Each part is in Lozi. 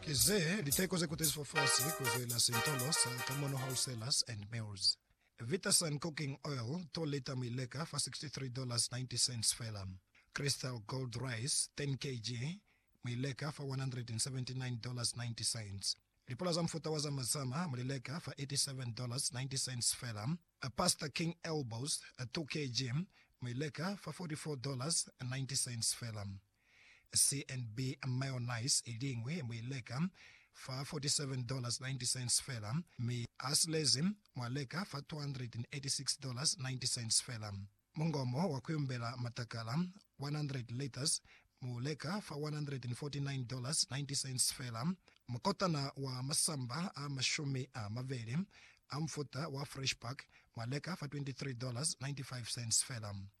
Kize liteko ze kutezi fofasi kuzwela sintolo sa Kamono Wholesalers and Mills. Vitasun cooking oil 2 lita muileka fa $63.90 fela. Crystal Gold Rice 10 kg muileka fa $179.90. Lipula za mufuta wa Zama Zama mulileka fa $87.90 fela. Pasta King Elbows 2 kg muileka fa $44.90 fela. CNB mayonnaise i liñwi mu i leka fa $47.90 fela, mi asilezi mwa leka fa $286.90 fela. Mungomo wa kuyumbela matakala, 100 liters, mu leka fa $149.90 fela. Mukotana wa masamba a mashumi a mabeli a mufuta wa Fresh Pack mwa leka fa $23.95 fela.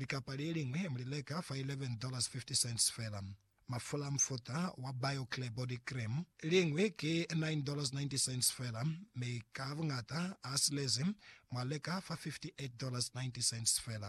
Likapa le liñwi mu li leka fa $11.50 fela. Mafula a mufuta wa Bio-Clear Body Cream liñwi ki $9.90 fela, mi ka buñata a silezi mwa leka fa $58.90 fela.